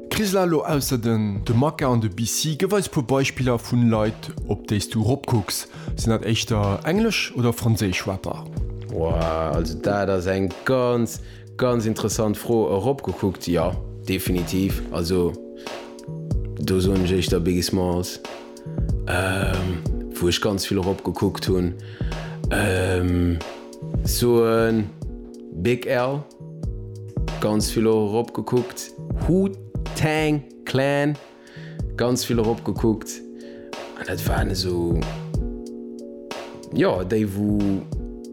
D'Krisla lo ausser den de Maka an de BC. Gëff eis puer Beispiller vun Leit op déis du rop kucks. Sinn dat éischter englesch oder franséisch Rapper? Wouah, also dat ass eng ganz, ganz interessant Fro. Erop gekuckt, jo, definitiv. Also do soen ech éischter Biggie Smalls, wou ech ganz vill erop gekuckt hunn. Soen, Big L, ganz vill och erop gekuckt. Wu-Tang Clan, ganz vill erop gekuckt. An dat waren esou, jo, déi wou,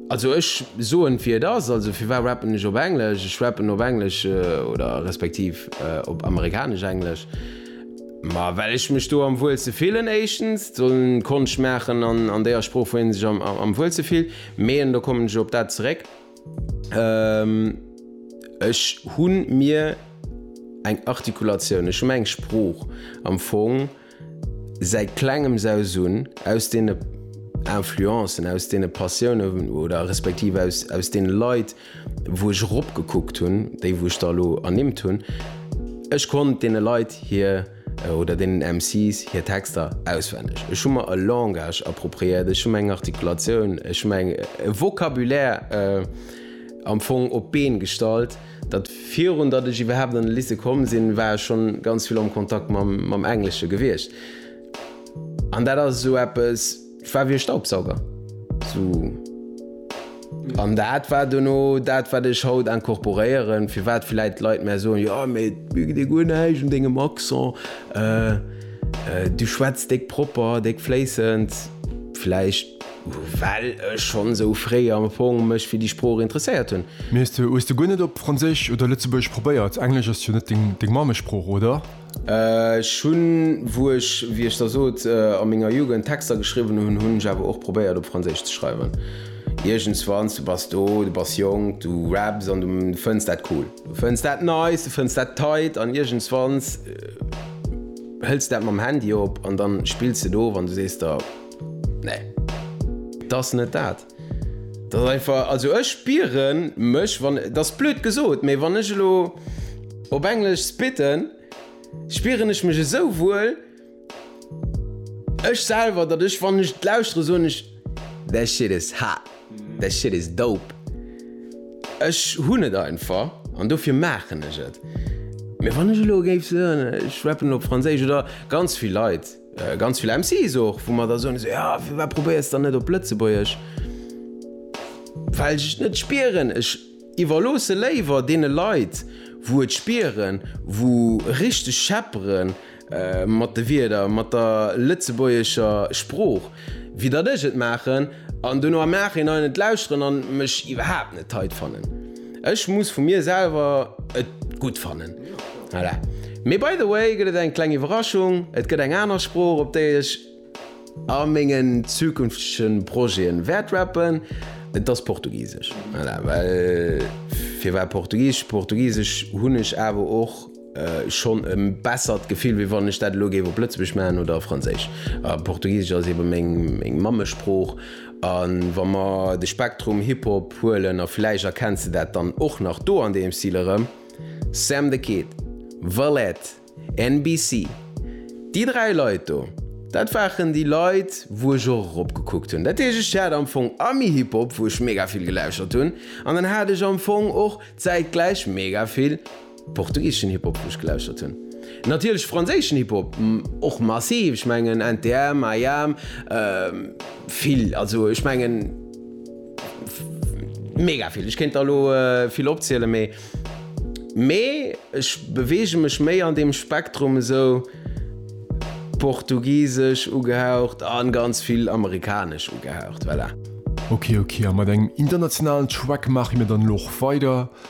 also ech soen wéi et ass, also firwat rappen ech op Englesch? Ech rappen op Englesch oder respektiv op amerikanesch Englesch, ma well ech mech do am wuelste fillen éischtens, dann Konscht maachen an déier Sprooch wou ee sech am wuelste fillt, Meeën, do kommen ech op dat zeréck. Ech hu mir eng Artikulatioun, ech hu mir eng Sprooch am Fong säit Klengems aus un, aus deene Influencen, aus deene Passiounen oder respektiv aus deene Leit, wou ech eropgekuckt hunn, déi wou ech der elo ernimmt hunn. Ech konnt deene Leit hir. oder deenen MCs hir Texter auswenneg. Ech hu mer e Langage appropriéiert, ech hu mer eng Artikulatioun, ech hu mer eng, e Vocabulaire am Fong op d'Been gestallt, datt virun datt ech iwwerhaapt an de Lycée komm sinn, war ech schonn ganz vill am Kontakt mam Englesche gewiescht. An dat ass esou eppes. Et war wéi e Staubsauger. So. An dat war duerno dat, wat ech haut incorporéieren, firwat villäit d'Leit mär soen, jo, mee et geet ee guer näischt un dengem Accent, du schwätz déck propper, déck fléissend. Villäicht well ech schonn esou fréi am Fong mech fir déi Sprooch interesséiert hunn. Mee hues de guer net op Franséisch oder Lëtzebuergesch probéiert? Englesch ass jo net deng Mammesprooch, oder? Ech hunn, wou ech, wéi ech der sot, a menger Jugend Texter geschriwwen hunn, hunn ech awer och probéiert op Franséisch ze schreiwen. Iergendswanns, du bass do, du bass jonk, du raps an du fënns dat cool. Du fënns dat nice, du fënns dat tight an iergendswanns hëls de dat mam Handy op an da spills de do, wann du sees der, nee, dat ass net dat. Dat ass einfach, also ech spieren mech, wann, dat ass blöd gesot, mee wann ech elo op Englesch spitten, spieren ech mech esou wuel, ech selwer, datt ech, wann ech et lauschteren, soen ech, that shit is hot, that shit is dope. Ech hunn et einfach an dofir maachen ech et. Mee wann ech elo géif soen, ech rappen op Franséisch, oder ganz vill Leit, Ganz vill MCs och, wou mer da soen, esou, jo, firwat probéiers de dann net op Lëtzebuergesch? Well ech et net spieren. Ech iwwerloosse léiwer deene Leit, wou et spieren, wou richteg scheppere mat de Wierder, mat der lëtzebuergescher Sprooch. wéi datt ech et maachen an dono am Nachhinein et lauschteren an mech iwwerhaapt net tight fannen. Ech muss vu mir selwer et gutt fannen. Voilà. Mee by the way gëtt et eng kleng Iwwerraschung, et gëtt eng aner Sprooch op déi ech a mengen zukünftege Projeten wäert rappen, et ass Portugisesch. Voilà, well firwat Portugisesch? Portugisesch hunn ech awer och. schonn e bessert Gefill, wéi wann ech dat elo géif op Lëtzebuergesch maachen oder a Franséisch. Portugisesch ass ebe meng Mammesprooch. A wa mer de Spektrum Hip-Hop huelen, a vläicht erkenns de dat dann och nach do an deem Stil erëm, Sam the Kid, Valette, NBC, déi dräi Leit do, dat waren déi Leit, wou ech och eropgekuckt hunn. Dat heescht, ech hat am Fong Ami-Hip-Hop, wou ech mega vill gelauschtert hunn, an dann hat ech am Fong och zäitgläich mega vill. Portugiseschen Hip Hop wou ech gelauschtert hunn. Natierlech franséischen Hip Hop och massiv, ech mengen NTM, IAM, vill, also ech mengen mega vill, ech kéint der elo vill opziele mee mee ech beweege mech méi an deem Spektrum esou portugisesch ugehaucht a ganz vill amerikanesch ugehaucht, voilà. Ok ok, a mat engem internationalen Track maache mir dann elo och weider.